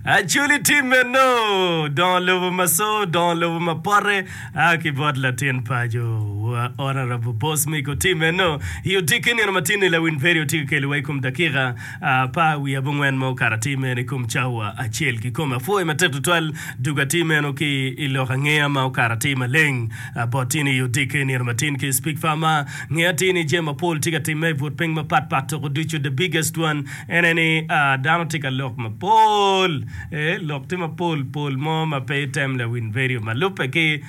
Acoli tim meno dongo lobo ma so, dongo lobo ma pote a ki bot latin paco wa Honourable Boss Miko. Tim meno i odiki nino ma tin-ni Lawiny Peri otye ka keliwa i kom dakika apar wiye abongwen ma okato atir meno i kom cawa acel kikome. Apwoyo matek tutwal dog atir meno ki i lok angeya ma okato atir maleng bot tin i odiki nino ma tin ki Speak Far ma ngeyo atir ni jami mapol tye ka timme i but piny mapat pat tuku ducu the biggest one En aye ni, Dano tye ka lok mapol, ee, lok tye mapol pol mo ma pe item lawiny vedio ma lubbe ki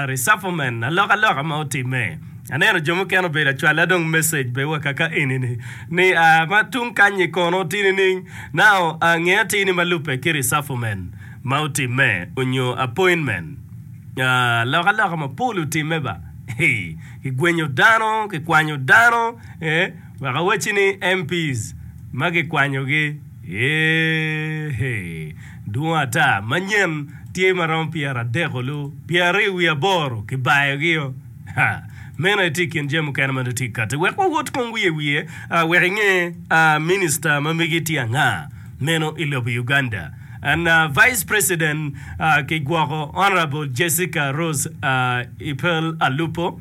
resufflement, alokaloka ma otimme. Aneno jo mukene obedo acwala dong message bene wa kaka eni-ni, ni, Aa, ma tung kany-nyi kono oti nining? Now, aa, nge atir ni ma lubbe ki resufflement ma otimme onyo appointment. Aa, alokaloka mapol otimme ba. Hee, kigwenyo dano, kikwanyo dano, ee. Wek awacci ni MPs ma gikwanyogi eeh dwong ata manyen tye ma romo pyera adek olu pyeraryo wiye aboro kibayogio ha meno aye tye i kin jami mukene ma nongo tye kati wek wawot kong wiye wiye wek inge Minister ma mege tye anga meno i lobo Uganda and Vice President ki gwoko Honourable Jessica Rose Epel Alupo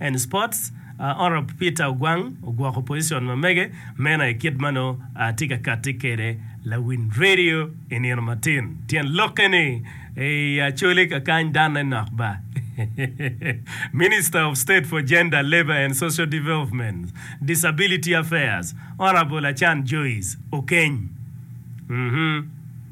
and Sports, Honourable Peter Ogwang ogwoko position ma mege meno aye kit ma nongo atye ka kati kwede lawiny radio i nino matin. Tyen lokke ni, Eei Acholi kakany danne nok ba! Minister of State for Gender, Labour and Social Development, Disability Affairs, Honourable Achan Joyce Okeny, uhmm.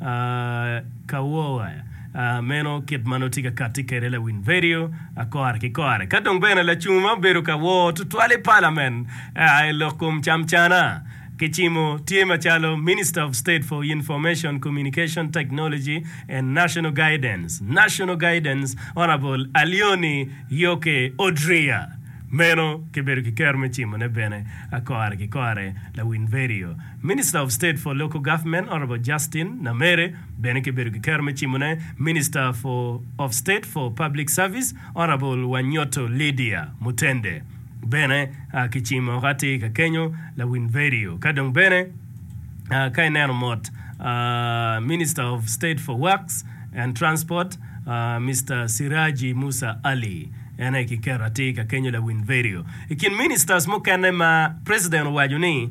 Ka wo a meno kit ma nongo tye ka katti kwede i lawiny redio akora ki kora, eka dong bene lacung ma obedo ka wo tutwal i Palament i lok kom camcana ki cimo tye macalo Minister of State for Information, Communication Technology and National Guidance, National Guidance, Honourable Alioni Yoke Odria. Meno kibedo ki kero me cimone bene akora ki kora i lawiny redio. Minister of State for Local Government Honourable Justin Namere bene ki bedo ki kero me cimone Minister for of State for Public Service Honourable Wanyoto Lydia Mutende bene ki cimo oko atir ka kenyo lawin vedio ka dong bene ka ineno mot Minister of State for Works and Transport Mister Siraji Musa Ali en aye ki kero atir ka kenyo lawin vedio. I kin ministers mukene ma President owaco ni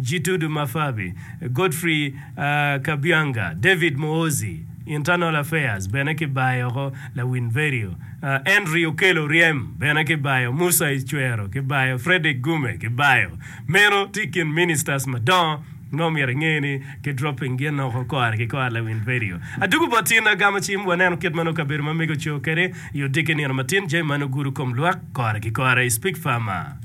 Gitudu Mafabi, Godfrey Kabyanga, David Muhoozi, Internal Affairs, bene kibayo oko, Lawin Verio, Henry Okello Oryem bene kibayo, Musa Icwero kibayo, Fredrick Gume kibayo. Meno tye i kin ministers madongo ma omyero inge ni ki dropping gin oko kore ki kore, Lawin Verio. Adwogo bot in agamo cim waneno kit ma nongo kabedo ma mege oco kede i odiki nino matin, jami ma nongo gudo kom lwak kore ki kore, Speak Farmer.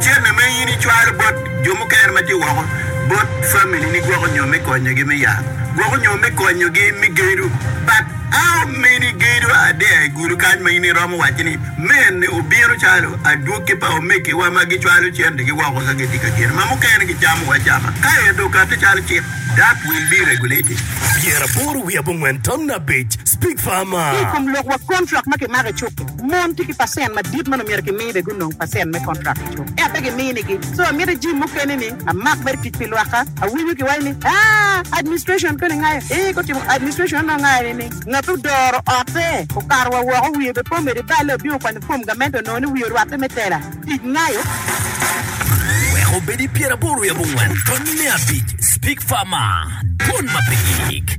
Cente ma in icwalo bot jo mukene ma tye woko bot familini gwoko nyo me konyogi me yat, gwoko nyo me konyogi me gedo. But how many gedo are there i gulu kany ma in iromo wacci ni mene obino calo adwogi pa omegiwa ma gicwalo centegi woko ka gitye ka gedo ma mukene gicamo acama ka ento okati calo cik? That will be regulated. Pyeraboro wiye abongwen tam abic, Speak farmer. Ki i kom lokwa, kontrak ma kimako i cuk-ki. Mon tye ki pacent madit ma nongo myero kimi be gunong pacent me kontrak i cuk. Ento pe giminigi. So amito jim mukene ni amak mere tic pi lwakka. Awinyo ki waci ni, Aa, administration koni ngayo. Ee, gutimo administration onongo ngayo ni ni ngat odoro otte okato wa woko wiye be pe omede balle obingo kwanyo fom gamente onongo ni wiye orwatte me tela. Tic ngayo. Wek obedi pyeraboro i abongwen, tonni me abic, Speak Farmer, dwon ma pe gik.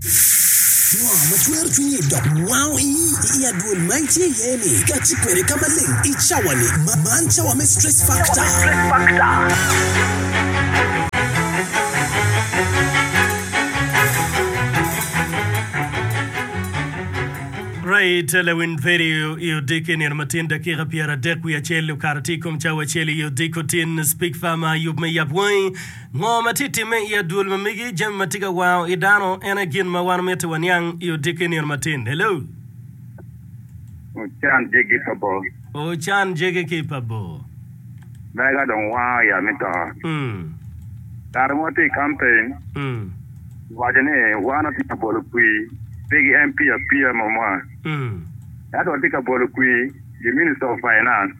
Ngo ma cwero cwinyi dok wango ii i adwol ma itye iye-ni? Kati kwede ka maleng i cawa-ni. Man cawa me Stress Factor. Right, Lewin Perry i odiko i nino ma tin dakika pyera dek wiye acel okato tye i kom cawa acel i odiko tin. Speak Farmer, yub me yap wangi. Ngo ma tye timme i adwol ma megi? Jami ma tye ka wango i dano en aye gin ma wan mitte waniang i odiki nino matin. Hello. Ocan jegi pa bor. Ocan jegi ki pa bor. Mega dong wango ya me to. Ngat mo tye i kampen owaco ni wan watye ka bolo kwir pigi en pii apia mamwa. Ento watye ka bolo kwir. The Minister of Finance,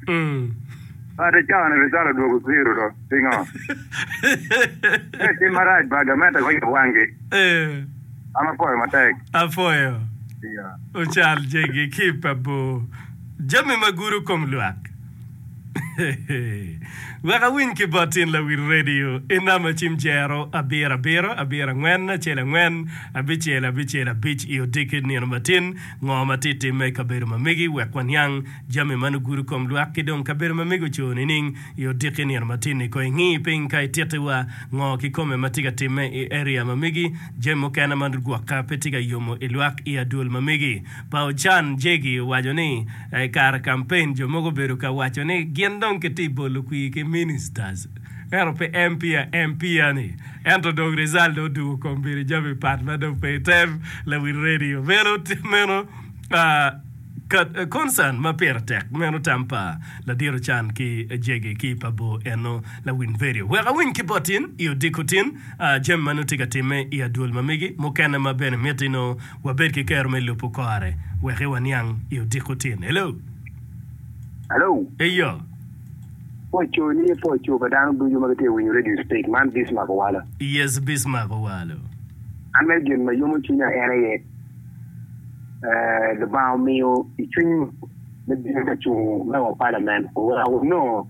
Bade cawane pe calo odwogo zero do. Pingo? Pe tim marac ba gamente ko yub wangi. An apwoyo matek. Apwoyo. Ocal jegi ki pa bor. Jami ma guro kom lwak. Wek awiny ki bot tin lawil radio i nam acim jero abiro abiro, abiro angwen acel angwen, abicel abicel abic i odiki nino matin. Ngo ma tye timme i kabedo ma megi wek waniang jami ma nugudo i kom lwak ki dong kabedo ma megi oco nining i odiki nino matin-ni? Kono ingi piny ka ititi wa ngo kikome ma tye ka timme i area ma megi. Jami mukene ma nugwokke pe tye ka yomo i lwak i adwol ma megi. Pa Ochan Jegi owaco ni, I kare kampen, jo mogo obedo ka waco ni gin dong kitye bolo kwir ki ministers. Ento pi empia empia ni ento dong result dong odungo kom bedo jami pat ma dong pe item lawil radio meno meno concern ma pire tek meno tam pa ladit ocan ki jegi ki pa bor eno lawil radio wek awiny ki bot in i odiko tin jami ma nongo tye ka time i adwol ma megi mukene ma bene miti nongo wabed ki kero me lubu kore weki waniang i odiko tin hello Hello. eyo. Pwocco niye pwocco pa dano ducu ma gitye ka winyo redio sitec man Bismark Owalo. Yes Bismark Owalo. An mere gin ma yomo cwinya en aye Lubanga omiyo i cwiny me bino ka cung me wa palament oweko wanongo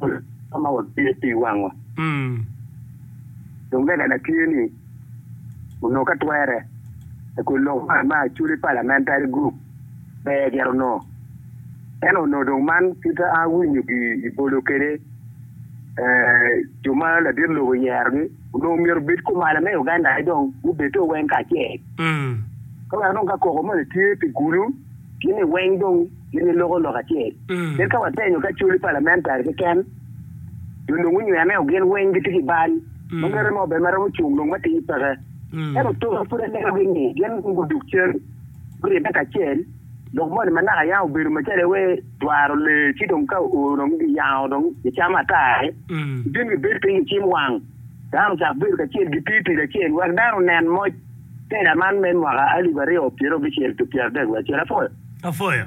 pol ma watye pi wangwa. Dong lega na tye ni. onongo ka twere I kun lok man ma actually parliamentary group ber gire onongo ento onongo dong man pud pe awinyo gi I bolo kede jo ma ladit lobo oyero gi onongo myero obed kumalo me Uganda ni dong gubed to weng kacel ka wek dong ka koko moni tye pi gulu gin ni weng dong gin ni loko lok acel kit ka watenyo ki actually parliamentary keken dong nongo nywene o gin weng gitye ki bal ma mere mo bene ma romo cung nongo ma tidi peke. Ento toka pud anenogi ni gin nongo guduk cen guribbe kacel lok moni ma naka yam obedo macalo iwe dwaro lee ci dong ka oo dong giyango dong gicamo ata aye gibino gibed piny gicim wang dano ocako bedo kacel giti tic acel wek dano onen moc tela man me mwaka alip aryo pyerabicel ki pyeradek wiye acel. Apwoyo. Apwoyo.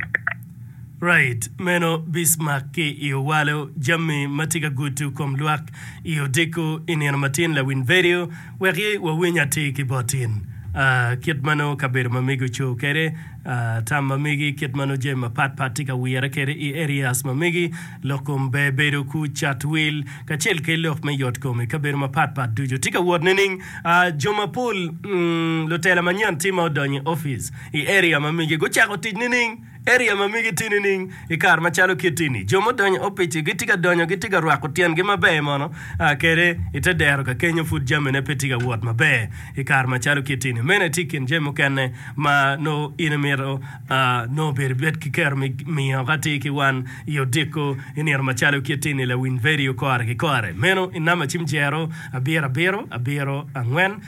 Right, meno Bismarck ki i owalo jammi ma tye ka gutu kom lwak i odiko i nino matin lawiny vedio wek i wawiny atir ki bot in. Ahh kit ma nongo kabedo ma megi ocoo kede, ahh tam ma megi, kit ma nongo jami ma pat pat tye ka wire kede i areas ma megi, lok kom ber bedo ku cat wil kacel ke lok me yot kom i kabedo ma pat pat ducu tye ka wot nining? Ahh jo mapol, umm lutela manyen tye ma odonyo i office. I area ma migi gucako tic nining? Area ma migi tye nining? I kare macalo kitti-ni, jo mudonyo i opic-ci gitye ka donyo, gitye ka rwako tyengi maber mono kede i te dero ka kenyo pud jamine pe tye ka wot maber i kare macalo kitti-ni. Meno aye tye i kin jami mukene ma nongo in imito nongo obedo ibed ki kero me miyo. Ka tye ki wan i odiko i nino macalo kitti-ni, lawiny vedio kore ki kore meno i namba cim jero abiro abiro abiro angwen.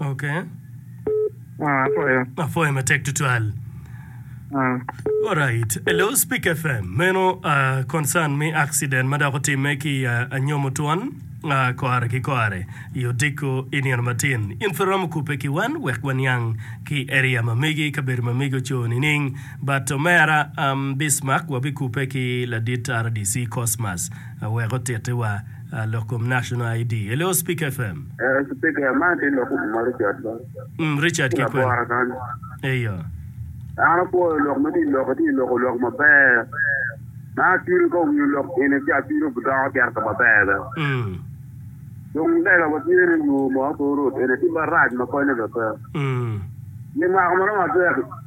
Okay. Ah, apwoyo. Apwoyo matek tutwal. Ah, Alright. Hello, Speak FM. Meno uh, concern me accident ma dok otimme ki uh, anyomo twon uh, kore ki kore i odiko i nino matin. In pe romo kupe ki wan wek waniang ki area ma megi kabedo ma megi oco nining. But omera um, Bismarck wabikupe ki ladit RDC Cosmas uh, wek otitiwa Lok kom National ID. Hello Speaker FM. Eh speaker man aye lok kom ma Richard ba. Mm, Richard ki kwen. Labora kan. Eyo. An apwoyo lok ma ti lok ti lok lok maber. Ma atwiri ko winyo lok ene ci atwiri budoko certo maber be. Mm. Dong lega wa tye ni yo mo ko rot ene ti barac ma konyo be pe. Mm. Ni mako ma romo atwero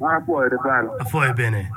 An apwoyo tutwal. Apwoyo bene.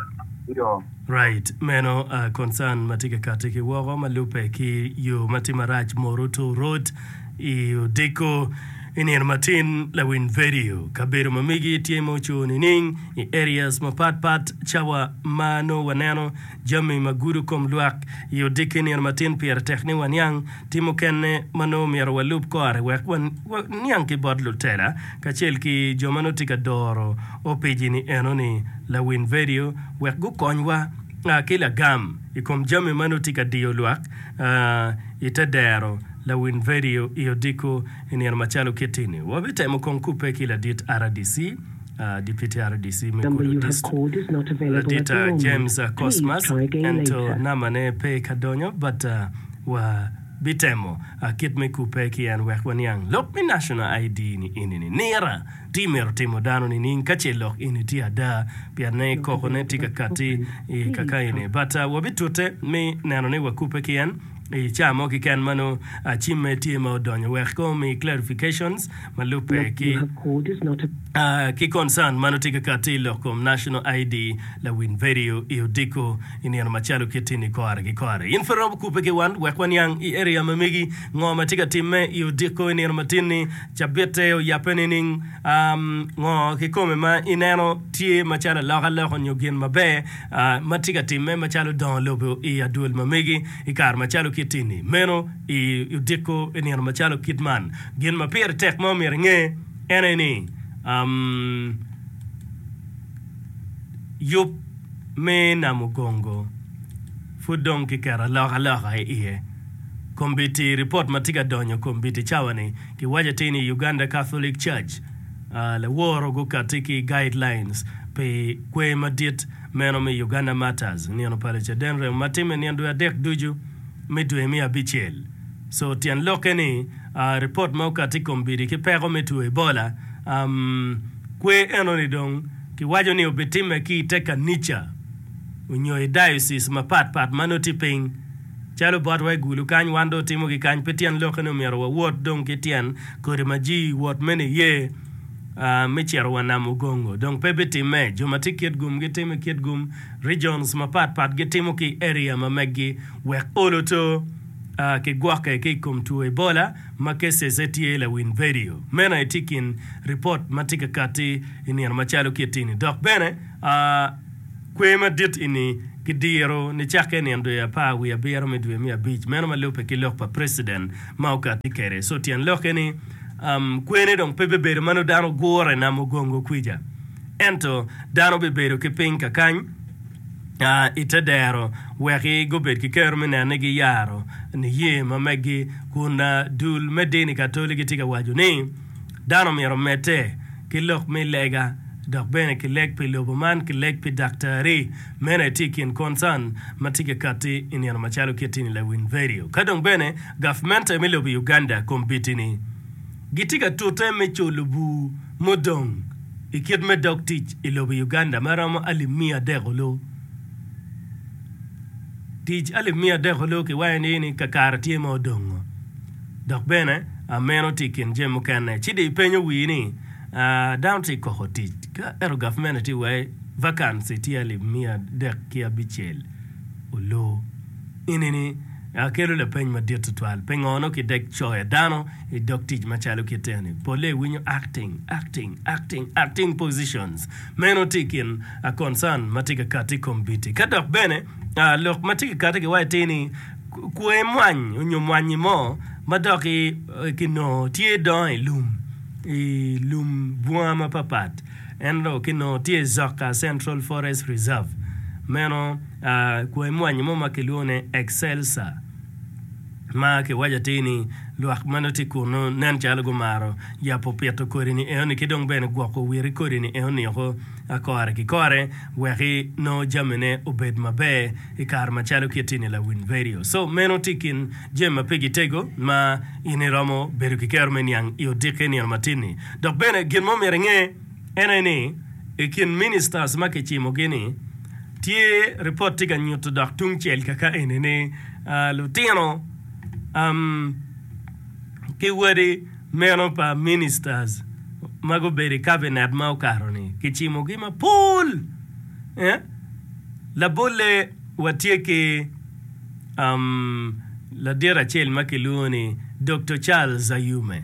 Iyo. Right. Meno a concern ma tye ka kati ki woko ma lubbe ki yo ma tye marac Moro Tour Road i Odiko i nino matin lawiny vedio. Kabedo ma megi tye ma ocur nining i areas mapat pat cawa ma nongo waneno jami ma gudo kom lwak i Odiko i nino matin pire tek ni waniang Tim mukene ma nongo myero walub kore wek waniang ki bot lutela kacel ki jo ma nongo tye ka doro opic-ni enoni, Lawin vidio wek gukonywa ki lagam i kom jami ma nongo tye ka diyo lwak i te dero. Lawin vidio i odiko i nino macalo kit-ti-ni wabitemo kong kubbe ki ladit RDC, Dipiti RDC me Kulu District, Ladit James Cosmas, ento nambane pe ka donyo bata. Wabitemo kit me kubbe ki en wek waniang lok me National ID ni eni ni nira ti mito timo dano nining ka ce lok eni tye ada pien ne koko ne ti ka kati i kaka eni but wabitute me neno ni wakubbe ki en i caa mo kiken mano cimme tye ma odonyo wek omi clarifications ma lubbe ki ki concern ma nongo tye ka kati i lok kom National ID lawil vedio i odiko i nino macalo kit ini kore ki kore. In pe iromo kubbe ki wan wek waniang i area ma megi ngo ma tye ka timme i odiko i nino matin ni. Cabitte oyabbe nining? Um, ngo kikome ma ineno tye macalo aloka loka onyo gin maber ma tye ka timme macalo dongo lobo i adwol ma megi i kare macalo kit ini? Meno i odiko i nino macalo kit man. Gin ma pire tek ma omyero inge en aye ni yub me Namugongo pud dong kiketo alokaloka i iye. Kombiti, ripot ma tye ka donyo i kombiti cawa-ni giwaco atir ni Uganda Catholic Church laworo gukatti ki guidelines pi kwer madit meno me Uganda Martyrs nino pa Lucaden remo ma timme nino dwe adek ducu me dwe me abicel. Co tyen lokke ni ripot ma okati i kom bidi ki peko me two Ebola, kwer enoni dong kiwaco ni obitimme ki i te kanica onyo i diocese mapat pat ma nongo tye piny. Calo botwa i Gulu kany wan dong watimo ki kany pe tyen lokke ni omyero wawot dong ki tyen kodi ma ji wot me niye me cito wa nam Ogongo dong pe bitimme. Jo ma tye i Kitgum gitimo i Kitgum, regions mapat pat gitimo ki i area ma meggi wek olo to. ki gwokke ki i kom two Ebola ma kecece tye lawiny vedio. Meno aye tye kin ripot ma tye ka katti i nino macalo kiti-ni. Dok bene, kwer madit eni kidiro nicakke i nino dwe apar wiye abiro me dwe me abic meno ma lubbe ki lok pa preciden ma okatti kwede. So tyen lokke ni kwer-ni dong pe bibedo ma nongo dano gure nam ogongo kwica, ento dano bibedo ki piny kakany. i te dero wek gubed ki kero me neno ni giyaro niye ma megi. Kun dul me dini Katoli gitye ka waco ni dano myero omedde ki lok me lega dok bene ki leg pi lobo man ki leg pi daktari. Meno aye tye i kin concern ma tye ka katti i nino macalo kit ini lawiny vedio. Ka dong bene gavmente me lobo Uganda kombitini gitye ka tute me culu bur. mudong i kit me dog tic i lobo Uganda ma romo alip miya adek olu. Tic alip miya adek olu kiwayo ni ni kakare tye ma odongo dok bene a meno tye i kin jami mukene. Ci dong ipenyo wii ni a dano tye koko tic ka ento gavment tye wai vacancy tye alip miya adek ki abicel olu. Enini kelo lapeny madit tutwal, pingo nongo kidek coyo dano i dog tic macalo kit eni? Polle iwinyo acting, acting, acting, acting positions. Meno tye i kin concern ma tye ka kati i kom biti. Ka dok bene lok ma tye ka kati ki waci tye ni kwo imwany onyo mwanyi mo ma dok kinongo tye idongo i lum, i lum bunga mapapat, en dong kinongo tye i Zoka Central Forest Reserve. Meno. Kwai mwanyi mo ma kilwongo ni Excelsior ma kiwaco atir ni lwak ma nongo tye kunnu nen calo gumaro yabo pito kodi-ni enoni ki dong bene gwoko witi kodi-ni enoni woko kore ki kore wek nongo jamine obed maber i kare macalo ki itini lawiny vedio. So meno tye i kin jami ma pigi tego ma in iromo bedo ki kero me niang i odikke i nino matin-ni. Dok bene gin mo myero inge. En aye ni, i kin ministers ma kicimogi ni, tye ripot tye ka nyuto dok tungcel kaka eni ni lutino ki wadi meno pa ministers ma gubedo i cabinet ma okato ni kicimogi mapol. Labolle watye ki ladit acel ma kilwongo ni Doktor Charles Ayume.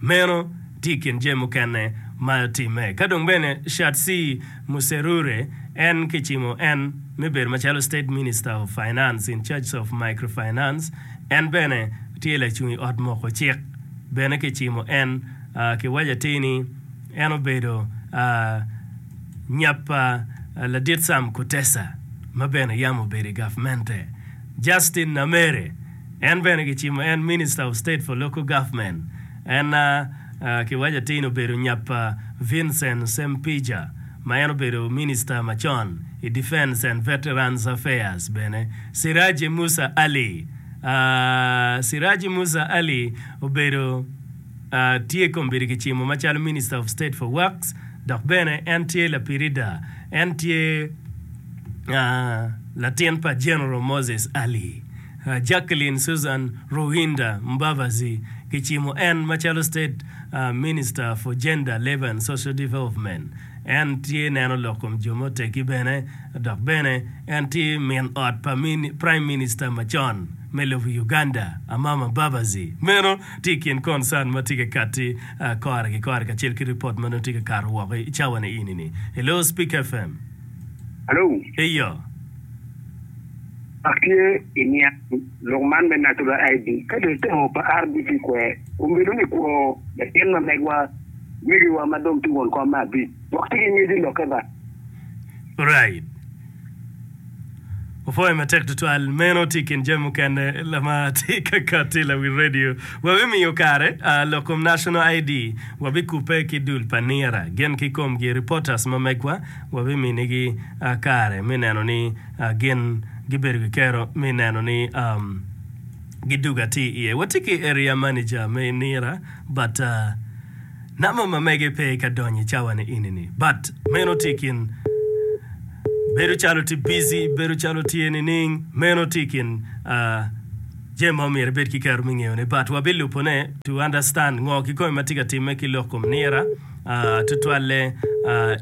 Meno tye i kin jami mukene ma timme. Ka dong bene Shatsi Muserure en kicimo en me bedo macalo State Minister of Finance in charge of Microfinance, en bene tye lacung i ot moko cik. Bene kicimo en kiwaco atir ni en obedo nyap pa Ladit Sam Kutesa ma bene yam obedo i gavmente. Justin Namere. En bene gicimo en Minister of State for Local Government. En ki waco atir ni obedo nyap pa Vincent Sempija ma en obedo Minister macon i Defence and Veterans Affairs bene. Siraji Musa Ali, Siraji Musa Ali obedo tye kombeddi kicimo macalo Minister of State for Works dok bene en tye lapirida. En tye latin pa General Moses Ali. Jacqueline Susan Ruhinda Mbabazi gicimo en macalo State Minister for Gender, Labour and Social Development. En tye neno lok kom jo ma otegi bene dok bene en tye min ot pa Prime Minister macon me lobo Uganda Amama Mbabazi. Meno tye i kin concern ma tye ka katti kore ki kore kacel ki report ma nongo tye ka kato woko i cawa ni eni ni. Hello Speak FM. Hello. Eyo. Dok tye i niangi lok man me Natural ID ka dong itemo pa RDP kwer, kun bedo ni kwo latin ma megwa, megiwa ma dong tye won kom me abic wok ci ki ngec ilokke ba. Alright. Wapwoyo matek tutwal. Meno tye i kin jami mukene ma tye ka kati i lawil radio. Wabimiyo kare lok kom National ID, wabikubbe ki dul pa nira gin kikomgi, reporters ma megwa, wabiminigi kare me neno ni Gin gibedo ki kero me neno ni gidugo atir iye. Watye ki Area Manager me Nira but number ma mege pe ka donyo i cawa ni eni ni. But meno tye kin bedo calo tye busy, bedo calo tye nining, meno tye kin jami ma omyero ibed ki kero me ngeyo ne. But wabilubo ne to understand ngo kikome ma tye ka timme ki lok kom Nira. tutwalle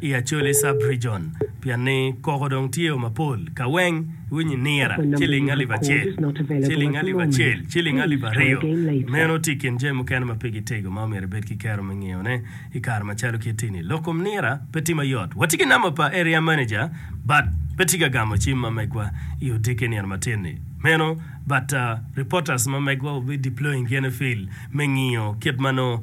i Acholi Sub-Region pien ni koko dong tye o mapol. Ka weng iwinyo i Nira, ciling alip acel, ciling alip acel, ciling alip aryo. Meno tye i kin jami mukene ma pe gitego ma omyero ibed ki kero me ngeyone i kare macalo kit eni. Lok kom Nira pe tye mayot. Watye ki namba pa Area Manager but pe tye ka gamo cim ma megwa i odiki nino matin ni. Meno but reporters ma megwa will be deploying gene field me ngiyo kit ma nongo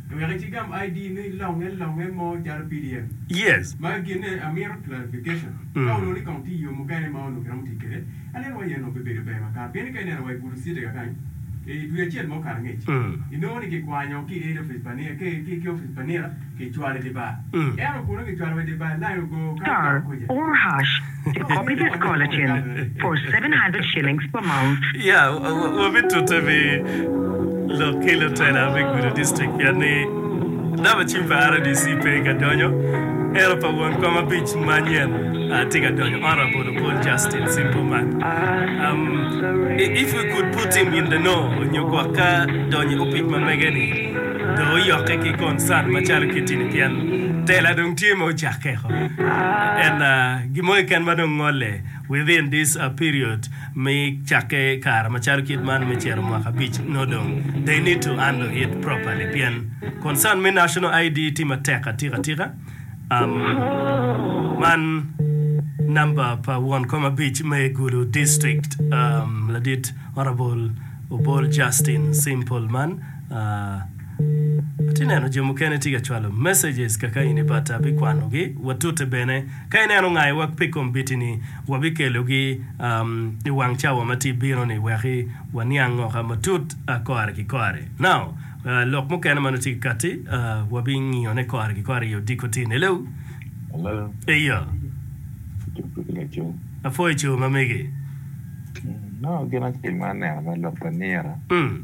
Wek itigam ID ni longe longe mo calo pdf. Yes. Magi ginne amito clarification. Ka onongo ni kong tye yoo mukene ma onongo kiromo tic kwede, aneno waci aye onongo pe bedo ber makato. Pien ni ka ineno wa i Budu City kakany, i dwe acel ma okato angec, inongo ni kikwanyo ki Head Office pa nira, ki, ki, ki Office pa nira, kicwalo i dye bar. Ento bute kicwalo wa i dye bar, line ogo kato dok kuca. Tic kop i tic kol acel for seven hundred shillings per month. Ya, wabitute pi lok ki lutela me gudo district pien ni namba cim pa RDC pe ka donyo, ento pa won kom abic manyen ah tye ka donyo, Honourable Opol Justin, simple man. Um, if we could put him in the know, onyo gwok ka donyo i opic ma mege ni, Dong oyokke ki concert macalo kitini pien tela dong tye ma ocakke ko. And gin mo keken ma dong ngolle within this period me cakke kare macalo kit man me cito mwaka abic nongo dong they need to handle it properly pien concern me national ID tye matek atika tika. Um man number pa won kom abic me Gulu district um ladit Honourable Obol Justin Simple man. Atye neno jo mukene tye ka cwalo messages kaka eni but abikwanogi watute bene ka ineno ngayi wa pi kombitini wabikelogi i wang cawa ma tye bino ni weki waniang ngo ka matut kore ki kore now lok mukene manongo tye ki kati wabingiyo ne kore ki kore i odiko tin hello Hello. Eyo. Cuk pe ka cuk. Apwo i coo mamegi. Nongo gin acel ma aneno me lok pa nira. Mm.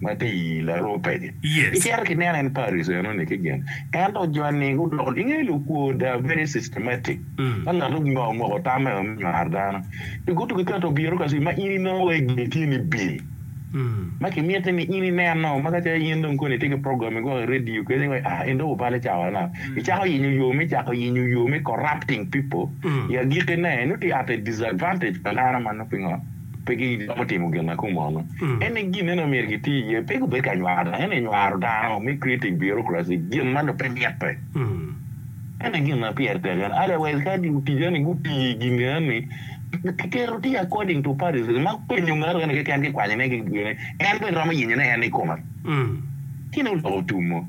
ma tye i larubbe-ni. Icito ki neno en Paris enoni ki gin. Ento joni gudoko, ingeyo lukwo they are very systematic ka ngat onyo omoko tamme me nywaro dano pi gutu ki keto obiro ka cwi ma in inongo wa igeni tye ni bil ma ki miti ni in ineno ma ka ce in dong koni itye ki program ni gwoko i radio keni wa ah en dong obale cawa na icako yenyo yo me cako yenyo yo me corrupting people i agiki ne nongo tye at a disadvantage pa dano ma nongo pingo pe giromo timo gin ma kumono. En aye gin eno myero giti iye, pe gubedo ka nywaro dano, ento nywaro dano me creating bureaucracy, gin ma nongo pe mitte. En aye gin ma pire tek eno. Otherwise ka lutica ni guti i gin eno ni, kiketo tye according to partisan ma penyo ngat mukene keken kikwanyo ne gin en bene romo yenyone en i kome. Cen dong oloko tum mo.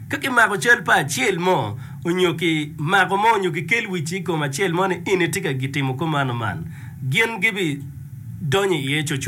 Ka kimako cal pa acel mo onyo ki mako mo onyo ki kel wic ikom acel mo ni in itye ka gitimo komano man, gin gibi donyo iye coco.